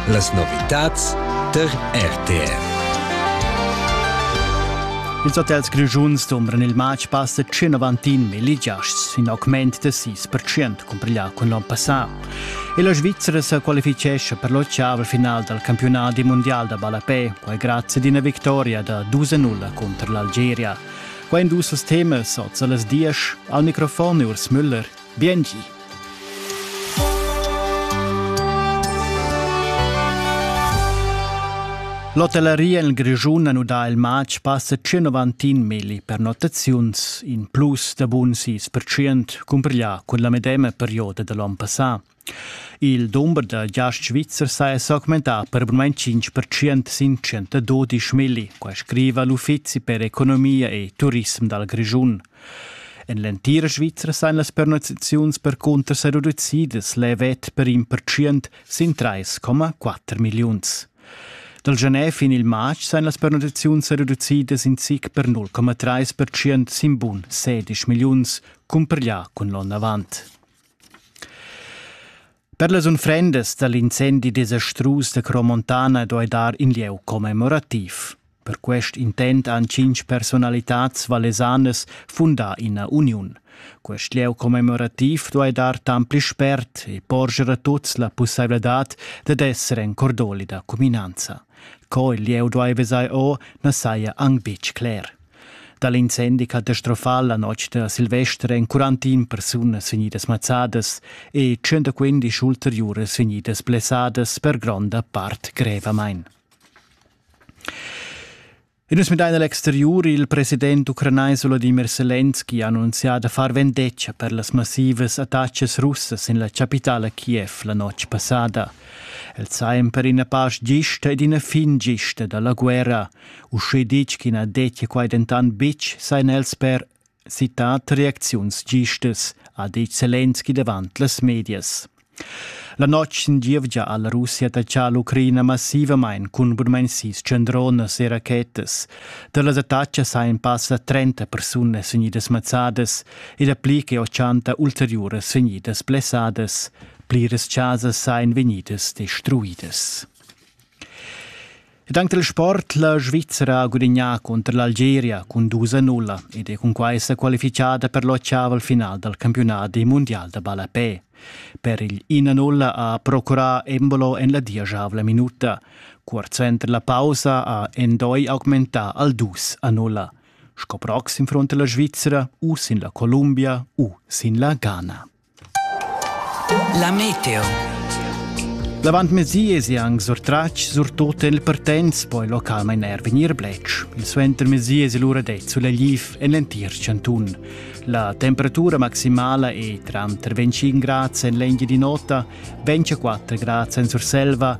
Las novitads tar RTF. Ils hotels grischuns dumbran il matg passa 191 mil giasts, in augment da 6% cumpriglià cun l'onn passà. E la Svizzera se qualifichescha per l'ottav final dal campionat mondial da ballapè, quai grazie ad una victoria da 2-0 contro l'Algeria. Quai in dus temas oz a las 10. Al microfon Urs Müller. Biengi. L'hotelleria en Grischun ha nudà il matg passa 191 milli pernottaziuns, in plus da bun 6% cumpiglià cun la medema perioda da l'onn passà. Il dumber da giasts svizzers ha s'augmentà per almain tschintg pertschient sin tschentadodisch milli, quai scriva l'Uffizi per economia e turism dal Grischun. En l'entira Svizra sain las pernottaziuns percunter sa reducidas levet per in pertschient sin 3,4 milliuns. Dal Genève in il matg sain las pernottaziuns reducidas in sic per 0,3% sin bun 16 milliuns, cumpareglià cun l'onn avant. Per las unfrendas dal incendi desastrus da Cromontana doi dar in lieu commemorativ. Per quest intent han cinc personalitads valesanas fundà ina uniun. Quest lieu commemorativ duai dar tant pli spert e porger a tuts la pussaivladad dad esser en cordoli da cuminanza. Co il lieu duai vesai o na saja anc betg cler. Dal incendi catastrofal la notg da Silvester èn 41 persunas vegnidas mazzadas e 115 ulteriuras vegnidas blessadas per gronda part grevamain. E nus midain l'exteriur. Il president ucranais Volodymyr Selenski ha annunzià da far vendetga per las massivas attacas russas en la chapitala Kiev la notg passada. El sa per ina pasch gista ed ina fin gista da la guerra. Uschè ditg ch'i na dettia quai dentant betg, sajan els per citat reacziuns gistas, ha ditg Zelensky davant las medias. La notg sin gievgia ha la Russia attaccà l'Ucraina massivamain cun bunmain sis tschendronas e rachetas. Da las attacas hajan passa 30 persunas vegnidas mazzadas e dapli che 80 ulteriuras vegnidas blessadas. Pliras chasas sajan vegnidas destruidas. Ed anche il sport la Svizzera ha gudignà cunter l'Algeria cun 2-0 ed è cunquai sa qualifichada per l'ottav final dal campiunat mundial da ballapè. Per il 1-0 ha procurà Embolo en la dieschavla minuta. Cuort suenter la pausa ha Endoi augmentà al 2-0. Sco prox in front la Svizzera u sin la Columbia u sin la Ghana. La meteo. L'avantmezdi esi anc surtratg surtut en il Pertens, poi localmain er vegnir bletsch. Il suentermezdi esi lura det sulegliv en l'entir chantun. La temperatura maximala è tranter 25 grads en l'engia di nota, 24 grads en Surselva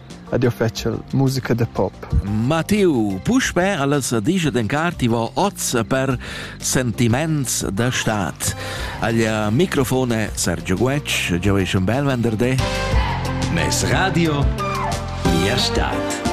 ed jeu fetschel musica da pop. Matteo, puspè alles disch dencar ti va oz per sentiments da stat. Al microfone Sergio Guetsch, giau è un bel venderdé. Mes radio, via stat.